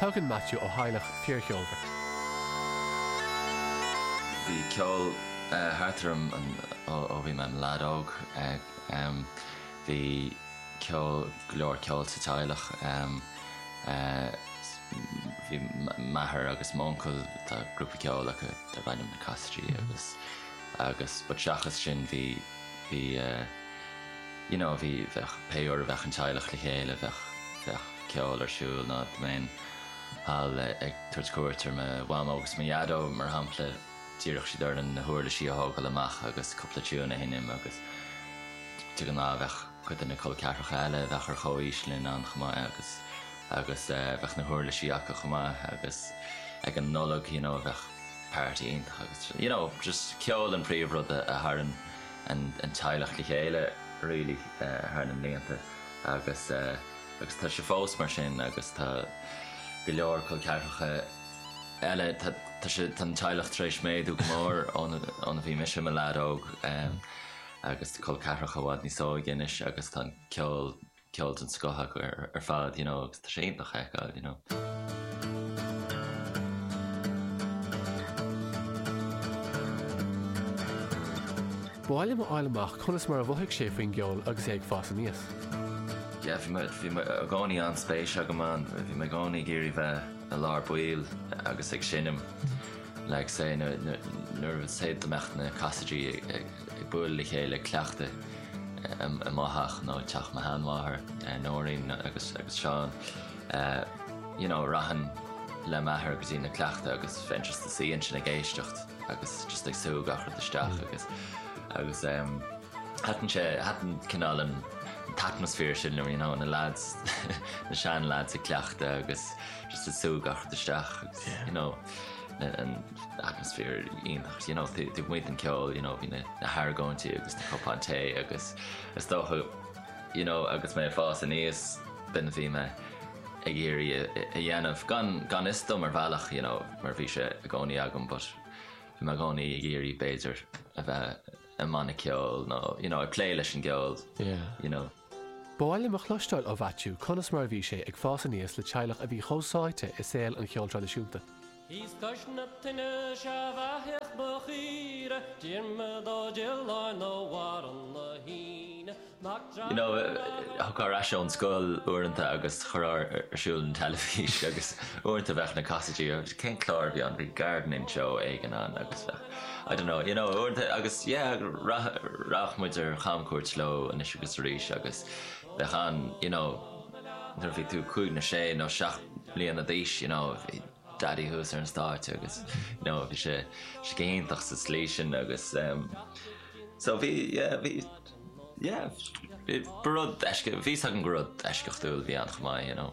Tagann Maitiú ó theaghlach fíorcheolmhar. Bhí ceol thart orm ó bhí mé im lead óg. Bhí ceol, go leor ceol sa teaghlach. Bhí m'athair agus m'uncail, tá grúpa ceoil acu darb ainm na Casaidigh agus, but seachas sin bhí, bhí eh, you know bhí, bheadh, pé uair a bheadh an teaghlach le chéile bheadh, bheadh ceol ar siúl nó dá mbeinn thall ag tabhairt cuairt ar mo Mhamó agus mo Dhaideo mar shampla d'iarrfadh siad orainn na huirlisí a thógáil amach agus cúpla tiúin a sheinm agus de ghnáth bheadh cuid de na col ceathracha eile a bheadh ar chomhaois linn ann chomh maith agus, agus eh bheadh na huirlisí acu chomh maith agus ag an Nollaig you know bheadh party iontach agus you know just ceol an príomhrud a tharraing an teaghlach le chéile really thar na mblianta agus agus tá sé fós mar sin agus tá go leor col ceathracha eile tá tá sé an teaghlach tar éis méadú go mór ón, óna bhí mise i mo leaid óg agus col ceathracha i bhfad níos óige anois agus tá ceol ceol den scoth acu ar fad you know agus tá sé iontach a fheiceáil you know. Ba mhaith liom fháil amach conas mar a mhothaigh sé faoin gceol agus é ag fás aníos. Yeah bhí mé bhí mé i gcónaí an-spéis agam ann. Bhí mé i gcónaí ag iarraidh bheith i lár baill agus ag seinm like say nuair a, say, dá mbeadh na Casaidigh ag ag bualadh le chéile, ag cleachtadh i mo theach nó i dteach mo sheanmháthar, Nóirín agus Seán, you know, rachainn le m'athair go dtí na cleachtaí agus bheinn just i mo shuí ansin ag éisteacht agus just ag sú gach rud isteach agus, agus thaitin sé, thaitin cineál an t-atmaisféar sin liom, you know, na lads, na sean lads ag cleachtadh agus just ag sú gach rud isteach agus, you know. an atmaisféar iontach you know taobh amuigh den ceol you know bhí na na hargóintí agus na cupáin tae agus is dócha you know agus mé ag fás aníos b'in a bhí mé ag iarraidh a a dhéanamh gan gan fhios dom ar bhealach you know mar bhí sé i gcónaí agam but bhí mé i gcónaí ag iarraidh b'fhéidir a bheith i mbanna ceoil nó you know ag plé leis an gceol you know. Ba mhaith liom a chloisteáil ó Mhaitiú conas mar a bhí sé ag fás aníos le teaghlach a bhí chomh sáite i saol an cheoil traidisiúnta. Is cois na tine sea bheathaigh mo chaoire, Diarmaid Ó Direáin ó Bharra na hÍne, Mac You know, Dreanáin Mac an. Thagfá ar ais ón scoil uaireanta agus chuirfeá ar siúl an teilifís agus uaireanta bheadh na Casaidigh, cén clár a bhí ann, bhí gardening show éigin ann agus bheadh. I don't know, you know, agus yeah, rachadh muid ar chamchuairt leo anois agus arís agus bheadh an, you know, nuair a bhí tú cúig nó sé nó seacht mbliana d'aois, you know, bhí Daidí thuas ar an stáitse agus, you know, bhí sé go hiontach sa tslí sin agus so bhí, yeah, bhí, yeah, ba rud eisceacht, bhí a fhios agam gur rud eisceachtúil a bhí ann chomh maith, you know.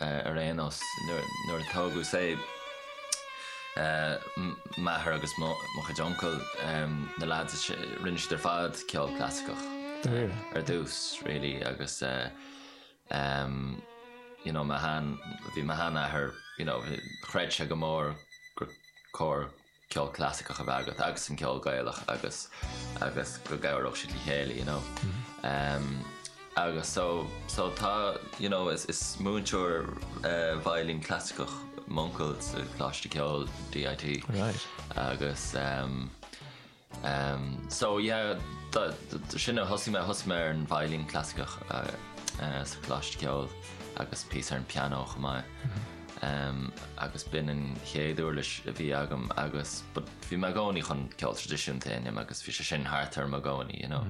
ar aon nós, nuair a tógadh, say, m'athair agus mo chuid uncail, na lads, rinne siad ar fad ceol clasaiceach ar dtús really agus you know mo shean, bhí mo sheanathair, you know chreid sé go mór gur cóir ceol clasaiceach a bheith agat agus an ceol Gaelach agus agus go gcabhródh siad le chéile you know. Agus so so tá you know is is múinteoir veidhlín clasaiceach m'uncail sa Coláiste Ceoil DIT. Right. Agus So yeah, sin é, thosaigh mé, thosaigh mé ar an veidhlín clasaiceach sa Choláiste Ceoil agus píosa ar an pianó chomh maith. Agus b'in an chéad uirlis a bhí agam agus, but bhí mé i gcónaí chun ceol traidisiúnta a sheinm agus bhí sé sin thart orm i gcónaí, you know.